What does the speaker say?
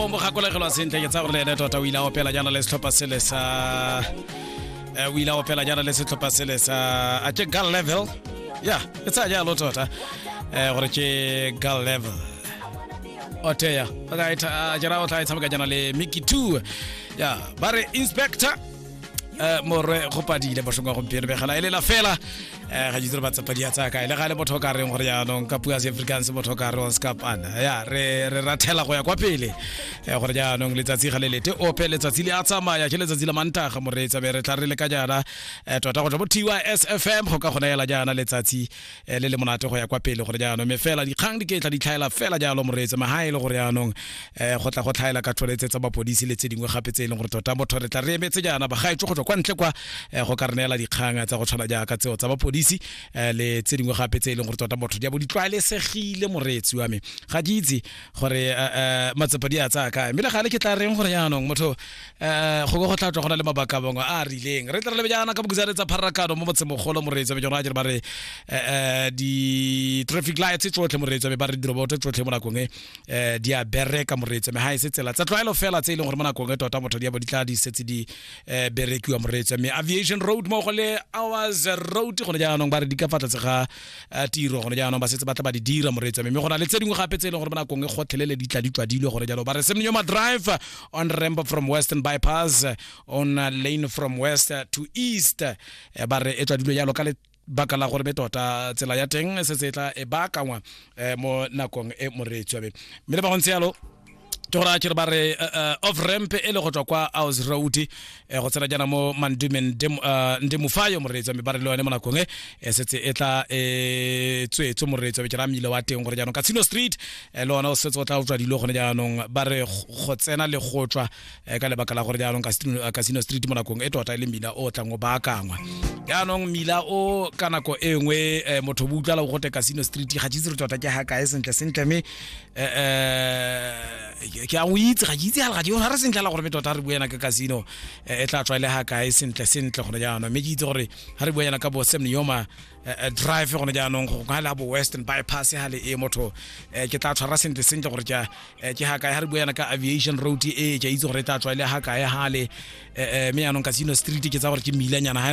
o mo gakologelwa sentle ke tsa gore le ene tota o ile a opela jaana le setlhopha sele sa eh, o ile a opela jaana le setlhopha sele sa a ke gal level ya ke tsaya jalo tota eh, gore ke gal level oteya a jera o tla e tshameka jaana le miki two ya ba re inspector Eh, morwe go padile boshong wa gompieno begela e lela fela eh, ga jitsere batsapadi ya tsaya kae le ga le motho o ka reng gore jaanong ka pua seafricans motho o ka re on scapana ya re re rathela go ya kwa pele eh, gore jaanong letsatsi ga le lete ope letsatsi le a tsamaya ke letsatsi la mantaga moreetsa be re tla re le ka jaana eh, tota go tla mo tys fm go ka kgona ela jaana letsatsi eh, le le monate go ya kwa pele gore jaanong me fela dikgang di ketla di tlhaela fela jalo moreetse maha e le gore jaanong um go tla go tlhaela ka tholetse tsa mapodisi le tse dingwe gape tse e leng gore tota motho re tla re emetse jaana bagaetso go tswa kwa ntle kwa eh, go ka re neela dikgang tsa go tshwana jaaka tseo tsa mapodisi eh, le tse dingwe gape tse e leng gore tota motho di a bo di tlwaelesegile moreetsi wa me ga ke itse gore eh, eh, matsepa di a tsaya kae mme le gale ke tla reng gore jaanong motho um go be go tla tswa go na le mabaka a mangwe a a rileng re tlere lebejana ka bokisane tsa pharakano mo motsemogolo moreetsa bejona a jere ba re um di-traffic lights tsotlhe moreetsa be ba re diroboto tsotlhe mo nakong e um di a bereka moreetsa me ga e se tsela tsa tlwaelo fela tse e leng gore mo nakong e tota motho di abo di tla di setse di um berekiwa moreetsa me aviation road mo go le hours road gone jaanong ba re di ka fa tlase ga eh, tiro gone jaanong ba setse ba tla ba di dira moreetsi mme go na le tse dingwe gape tse e leng gore ba nakong e gotlhelele di tla di twadilwe gone jalo ba re semnyo ma drive on ramp from western bypass eh, on lane from west to east eh, ba re e twadilwe jalo ka le baka la gore be tota tsela ya teng se se tla e baakangwa mo nakong e moreetswabe mme le ba go ntse yalo ke gore a kere ba re uh, uh, off ramp e le go tswa kwa aus road eh, go tsena jana mo mandume nde mofayo uh, moreetso mme ba re le yone mo nakong e eh, setse e tla e tswetswe moreetso ke ra mmile wa teng gore jaanong casino street eh, le ona o setse o tla utlwa dilo gone jaanong ba re go tsena le go tswa eh, ka lebaka la gore jaanong casino street mo nakong e tota e le mmila o tlang o baakangwa jaanong mmila o ka nako e nngwe eh, motho bo utlwala o gote casino street ga tshitse re tota ke ga kae sentle sentle mme Eh, eh, ke a o itse ga ke itse ga ke ga re sentle la gore me tota re bue yana ka casino eh, e tla tswa le ha kae sentle sentle gone jaanong mme ke itse gore ga re bue yana ka bo Sam Niyoma eh, eh, drive gone jaanong go ga le ha bo Western bypass ha le e motho eh, ke tla tshwara sentle sentle gore ke a- eh, ke ha kae ga re bue yana ka aviation road e ke a itse gore e tla tswa le ha kae ha le eh, eh, mme jaanong casino street ke tsa gore ke milanyana ha